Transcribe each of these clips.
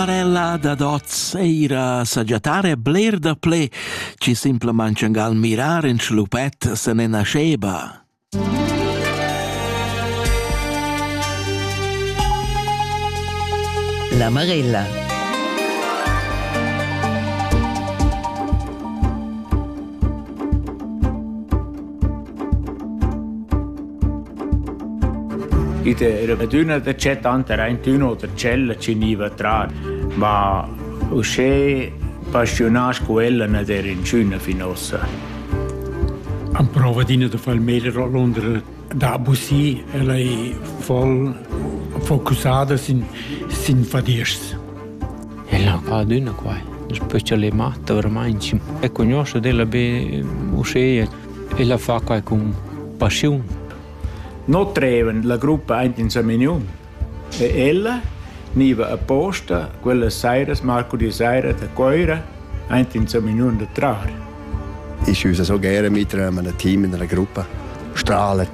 Marella dad oz eira sagiatar e bler da ple, chi simplamaing gal mirar in schlupet se ne nascheba. La Marella Id era adüna da chat tanter aintün oter ch'ella chi gniva a trar, ma uschè paschiunà sco ella n'ad era inchüna fin uossa. Am prova adina da far il meglio a Londra da abusir. Ella è voll focussada sin, sin fadiers. El ha fat adüna quai, specialmaing dovramaing e cugnuoscha d'ella be uschea. El ha fat quai cun paschiun. No trevan la gruppa aint in Samignun e ella gniva apposta quellas sairas, marcudì saira da Coira, aint in Samignun da trar. ist unser so gerne mit einem Team in einer Gruppe. Strahlt,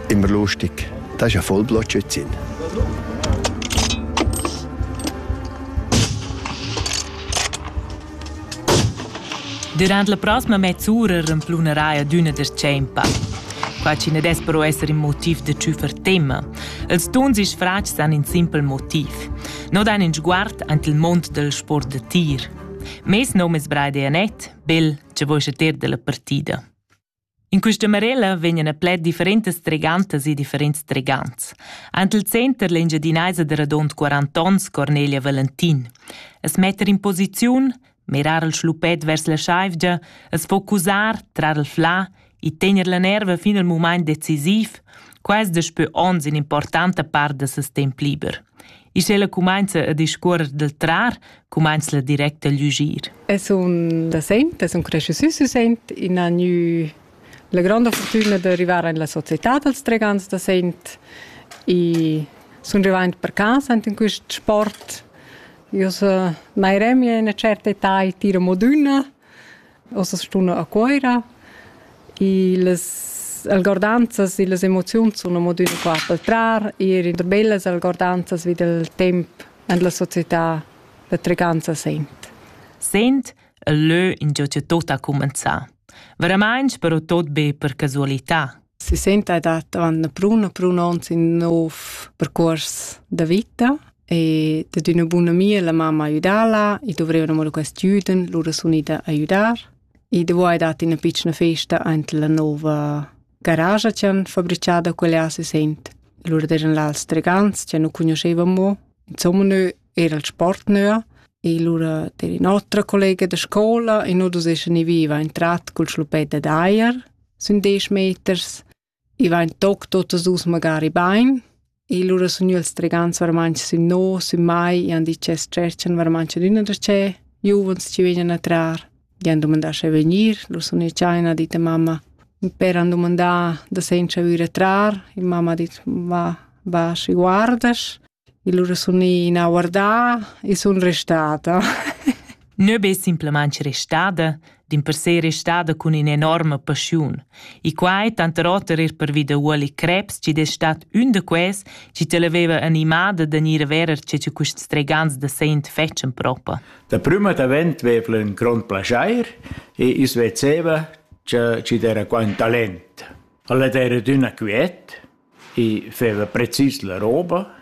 immer lustig. Das ist ja voll Blotschützin. Durant la prossima mezz'ura remplunerai ad una da tschempa. Qua ci ne des però essere in motiv de ciufer tema. Els tuns is fratgs han in simpel motiv. No dan in sguard ant il mond del sport de tir. Mes nom es Brei Dianet, bel, che voi ter della partida. In questa marella vegnan a pled differentas tregantas e differents tregants. Ant il center l'engiadinaisa de radont 40 ons Cornelia Valentin. Es metter in posiziun, mirar il schlupet vers la schaivgia, es focusar, trar il fla e tener la nerva fin al mumaint decisiv, quais daspö ons in importanta part da ses temp liber. E sch'ella cumainza a discuorrer dal trar, cumainza la direct a lügir. Es un da saint, es un cresciusü sü saint, in ha gnü la granda fortuna da arrivar in la società dals tregans da saint e sun rivaint per casa in quist sport. Io so mai remia in una certa età e tiro modüna Ossa stuna a Cuoira e las algordanzas e las emoziuns sun amo d'üna part dal trar, eir in der bellas algordanzas vi dal temp en la società da Treganza Sent. Sent e lö ingio cha tuot ha cumenzà. Veramaing però tuot be per casualità. sesenta ed avant brun brun ons in nov percurs da vita e dad üna buna amia la mamma aiudala e dovrevano mo quest juden lura sun ida aiudar e devo hai dat ina piccina festa ante la nova garage che han fabbricata quella sesent lura eran là stregans che nu conoscevamo insomma noi er al sport nua e lura der in'otra collega da scola e nu dus eschan i viva in trat cul schlupetta d'aier sun desch meters i va in toc totas dus magari bain e lura sun io els tregants varmanch sün no sün mai e han dit che stretchan varmanch ad üna da ce giuvens ci vegnan a trar gli han domandà se venir lo sun i chaina dit a mamma per han domandà da senza vir a trar e mamma ha dit va va si guardas Il sun ina guardà e sun restada. Neu be simplamain restada, din per sé restada cun in'enorma passiun. E quai tanter oter er per vi da Uoli Krebs, chi es stat ün da quels chi te l'aveva animada da gnir a verer che che quist stregans da sent fetschen propa. Da prüma d'avent vev'la ün grond plaschair e i's vezeva che chi d'era qua ün talent. Ella era d'üna quiet, I feva precis la roba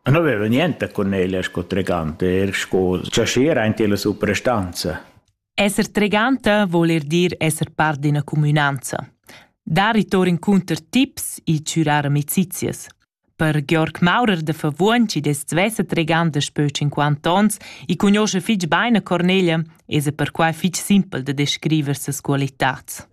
e nu veva niente cun ella sco treganta, eir sco chaschier aint illa suprastanza. Esser treganta voul eir dir esser part d'üna cumünanza. Dar i tour incunter tips e chürar amicizias. Per Georg Maurer da Favuon, chi dess svessa treganta spö 50 ons e cugnoscha fich bain a Cornelia, esa perquai fich simpel da descriver ses qualitats.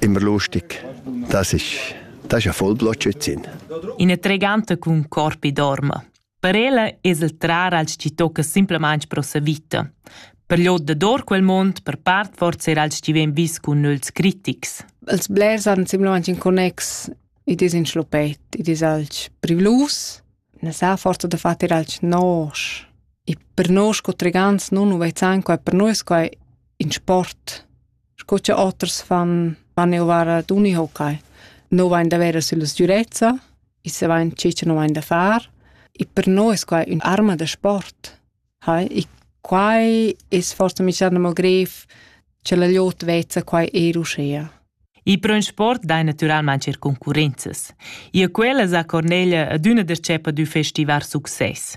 Immer lustig, das ist, das ist ein Vollblotschützin. In eine tregante con corpi dorma. Per ella es il trar als chi tocca simplesmente pro sa vita. Per gli da dor quel mond, per part forse era als chi ven vis con nulls critics. Els blers han simplesmente in connex, i dis in schlopet, i dis alch privlus, ne sa forza da far alch nosch. E per noi sco tregants nun nu vezzan quai, per noi sco in sport. sco che oters fan, van eu vara d'unihokai. No vain da vera sulla sgürezza, i se vain ciò che no vain da far. E per noi es quai un'arma da sport. Hai? E quai es forse mischando mo gref che la liot vezza quai er uschea. I pro in sport dai natüralmaing er concurrenzas. Ia quella sa Cornelia ad üna dercepa d'ü festivar success.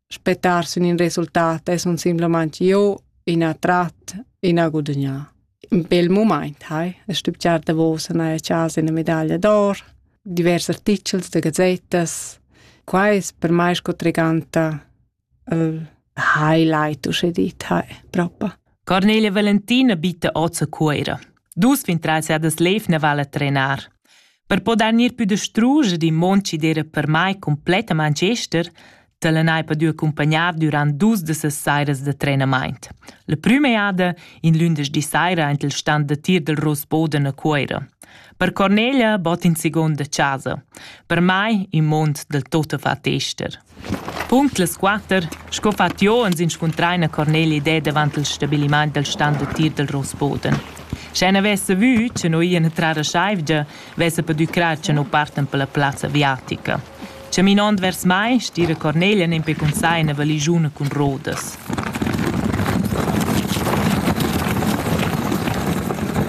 Spettar sün ün resultat es un simplamaing io in attrat, in a gudagnà. Ün bel mumaint hai, a stübgiar davos a gnanca chasa üna medaglia d'or, divers artichels da gazettas. Quai es per mai sco treganta il highlight, usche dit, hai, proprio. Cornelia Valentina bitta oz a Cuira. Dus fin trais edas lev ne vala trenar. Per poder gnir pü distruger in mond chi d'era per mai completament gester, te l'anai padü accompagnar durant dus de ses sairas de trenamaint. La prüma jada, in lündeschdi saira, int il stand de tir del Rosboden a Cuira. Per Cornelia bot in seconda casa. Per mai in mond del tota fa tester. Punct las quatter, sco fa Tio ans inscuntrar ina Cornelia idè davant il stabilimaint dal stand d'utir dal Rossboden. Sche n'avesse vü, che nu ian trar a Scheivgia, vesse pudü crar che nu partan per la plazza aviatica. Chaminond vers mai, stira Cornelia nempe cun sai ina valigiuna cun rodas.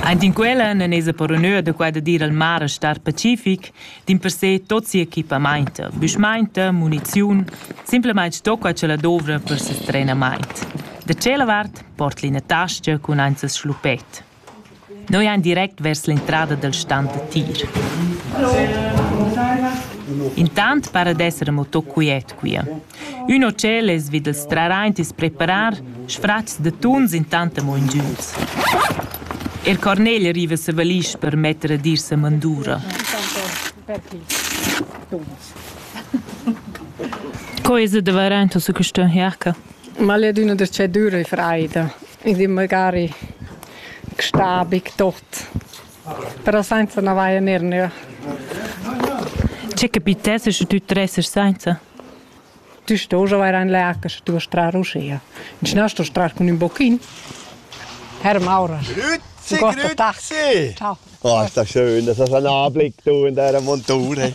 Aint in quella non esa per onur da quai da dir al mare star pacific dimpersè tot sia equipamainta, büschmainta, muniziun, simplamaing stocca ch'ella dovra per ses trenamaint. Da tschella vart port'la ina tascha cun aint ses schluppet. Noi ein direct vers l'entrada dal stand da tir. Intant para d'esser amo tot quiet quia. Ün hotel es vi dal strar aint i's preparar sfratgs da tuns intant amo ingüns. Er Cornel riva sa valisch per metter ad ir sa mandura. Co es da varaint su quistön Jerca? Ma l'è d'üna dschedüra e freida. I di magari stabig tot. Però senza na vaia ner, ne. C'è capitesse che tü tressas senza? Tü stos avair in lac sche tü vas trar uschia. Inschna stos trar cun ün bochin. Herr Maurer. Grüezi, grüezi! Ciao. Oh, ist das schön, das ist ein Anblick, du in deiner Monture.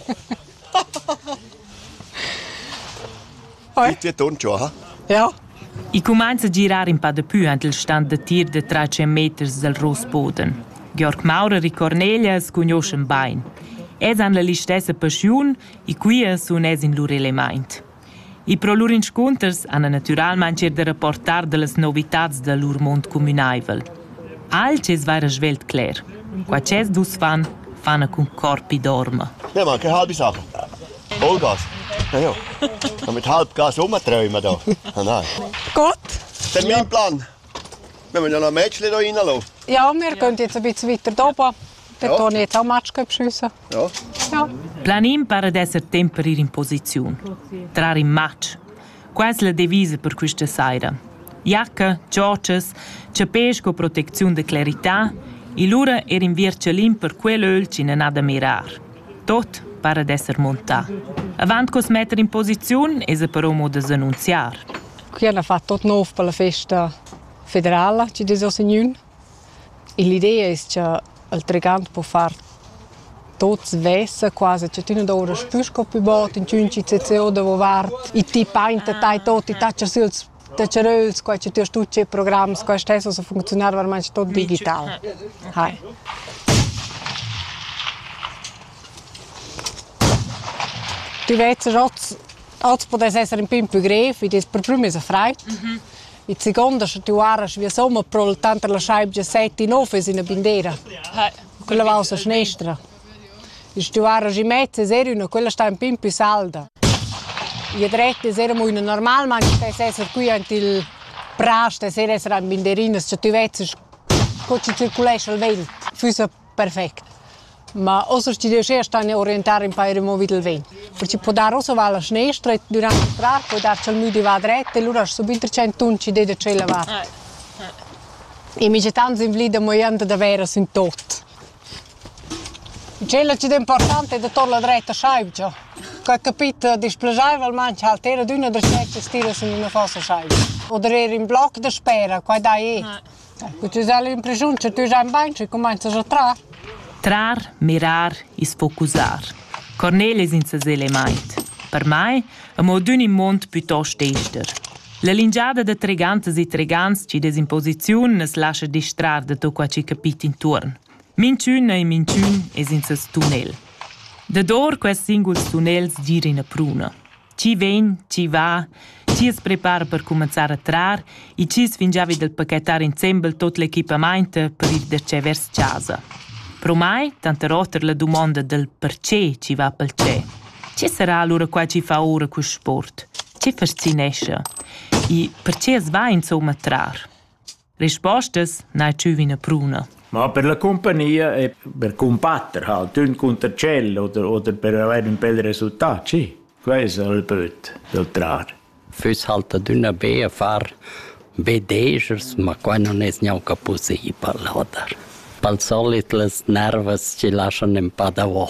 Bitte ton schon, ha? Ja. I cumainza a girar in pa da pü ant il stand da tir da tra 100 meters dal Rossboden. Georg Maurer e Cornelia scugnioschan bain. Els han la listessa paschiun E quia sun els in lur elemaint. E pro lur inscunters han natüralmaing eir da rapportar da las novitats da lur mond cumünaivel. Alch es vaira svelt cler. Qua ch'els dus fan, fana cun corpi dorma. Ne ma che halbi sachen. Olgas. Na jo. Damit halb Gas umträumen da. Nein. Gott. Das ist mein Plan. Ne vegnan a match le do ina lo. Ja, wir gehen jetzt ein bisschen weiter oben. Dort ja. habe ich jetzt auch Match geschossen. Ja. ja. Planin pare d'esser temp per ir in posiziun. Trare in match. Quasi la devisa per questa sera. Jacke, Georges, chapè sco proteziun de clarità, e lura er in vircelin per quell'öl ci non ha da mirar. Tot pare d'esser montà. Avant cos metter in posiziun es però modo d'annunziar. Qui han fatg tot nov per la festa federala chi dess ho signun. E l'idea es cha il tregant po far tot svessa quasi cha tü nu doura spü sco pü bod inchün CCO davo vart e ti painta tai tot e tatscha süls tacceröls qua cha tü stut che programs qua stessa so funcziunar varmanche tot digital. Hai. Tü vezz rots Oz pudess esser in pin più grev, id es per prüma esa fraid. Mm -hmm. In seconda scha ti guardas via somma, però tanter la schaibgia sette in off es ina bindera. Quella va sa schnestra. Schi guardas in mezza es er una, quella sta un pin più salda. E dretta es era una normal, ma anche se esser qui ant il pras, es er esser an binderinas, scha ti vezzes co ci circulesce il vent. Füssa perfect. Ma ossa schi riuscher stan a orientar ün pair amo vi dal vent, perche po dar ossa va la schnestra e durant l'astrar po dar cha'l müdi va dret e lura sun be ün trecentun chi deda tschella vart. E micha tants invlid amo jand davera sün tot. Tschella chi'd è important è da tornar dret a schaivgia. Cò he capit displaschaivalmaing cha'l ter adüna da tschert stila sün üna fossa schaivgia. O der eir ün bloc daspera, quai dai e. Cu ti sai l'impressiun che tü sai bain schi cumainzas a trar. Trar, mirar e sfocusar. Cornel es in sesez elemaint. Per mai, amo adün in muond pütost ester. La lingiada da tregantas e tregants chi'd es in posiziun nu's lascha distrar da tot quai chi capit intuorn. Minchün e minchün es in seis tunnel. Dador quests singuls tunnels gira üna pruna. Chi vegn, chi va, chi as prepara per cumanzar a trar e chi es fingià vi dal pachetar insembel tuot l'equipamaint per ir da che vers chasa. Pro mai, tanter oter la dumonda dal perche chi va pel tschè. Che sarà alura quai chi fa oura quist sport? Che fascinescha? E perche as va insomma a trar? Rispostas n'hai tschü üna pruna. Ma per la cumpagnia e per cumbatter halt ün cunter tschel oder oder per avair ün bel resultat, sì. Quai es il böt dal trar. Füss halt adüna be a far vedesers, ma quai non es gnanca pussibel, oder? Pel solit las nervas ci laschan ün pa davo.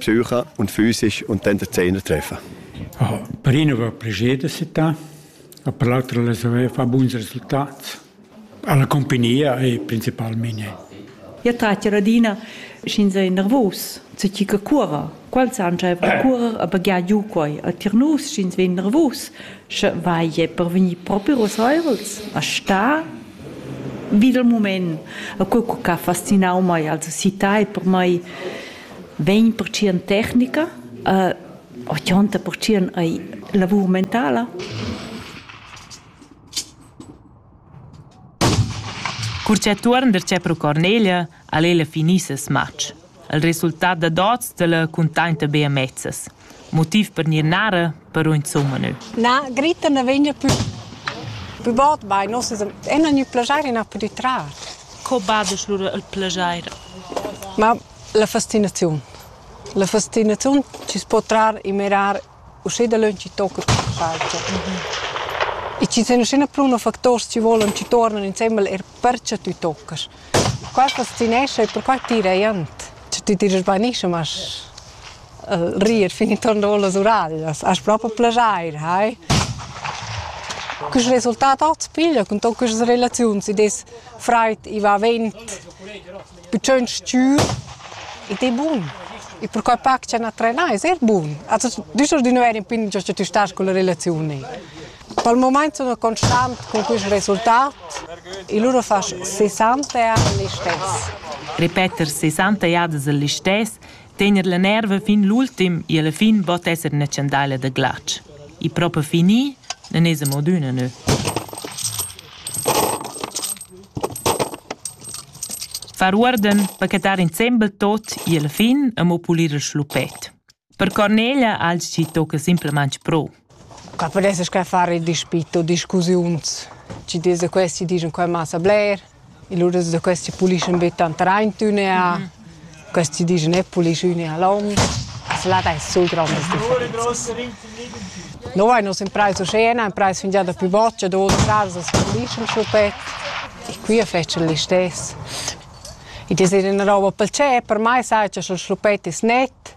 Zürcher und physisch und dann der Zehner treffen. Per ina va plascher da città, e per l'altra las haver fa buns resultats. Alla compagnia e principalmente. Io tratto adina, sch'in sei nervos, se chi che curra. Quals han già currer a baghiar giu quai. A tir nus, sch'ins vegn nervos, Sche vai è per vegnir propi ruseivels a sta vid il moment. E quel che ha fascinau mai als città e per mai vegn per ci tecnica, uh, 80% ai lavur mentala. Cur cha tuorn darcheu pro Cornelia ha'l ella finì ses matg. Il resultat dad oz da la cuntainta be amezzas. Motiv per gnir narra, però insumma nü. Na, Grita na vegna pü pü bod bain. Nus es e non gnü plajair inapü di trar. Co badesch lura il plajair? Ma la fastinaziun. La fastinaziun chi's po trar e mirar Uschè dalöntsch chi tocca tuot insatge. E chi sun üschina plü na factors chi volan chi tuornan insembel eir perche tü toccast. Qua fascinescha e perquai tira eir jent. Scha tü tirast bainischem as rir fin intuorn our las uraglias. Hast propi plaschair, hai? Quist resultat hoz piglia cun tot quistas relaziuns, id es fraid, i va vent. bütschögn stür ed è bun. E perquai pa cha na trenà es eir bun. Also düscher di nu eir in pin giò cha tü stast culla relaziun ni. Pel mumaint sun constant cun quist resultat e lura fasch 60 ans listess. Repeter 60 jadas il listess Tener la nerva fin l'ultim e alla fin bot esser ina chandaila da glatsch. E propa fini non es amo d'üna nö. Far uorden pachetar insembel tot e alla fin amo pulir il schlupet. Per Cornelia alzi tocca simplemente pro. Qua pudesses che far il dispit u discussiuns. Ci dis da questi dischan qua massa bler, e lura da questi pulischan be tant raint üna, questi dischan e pulisch üna long. Se là dai sul grondas differenzas. No vain nus imprais uschè, na imprais fingià da più boccia, do da casa as pulischan schupet e qui a fetschan listess. I es ina roba pel tschep, per mai sai cha sch'el schluppet es net,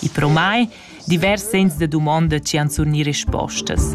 I pro mai divers segns da dumonda chi han surgni respostas.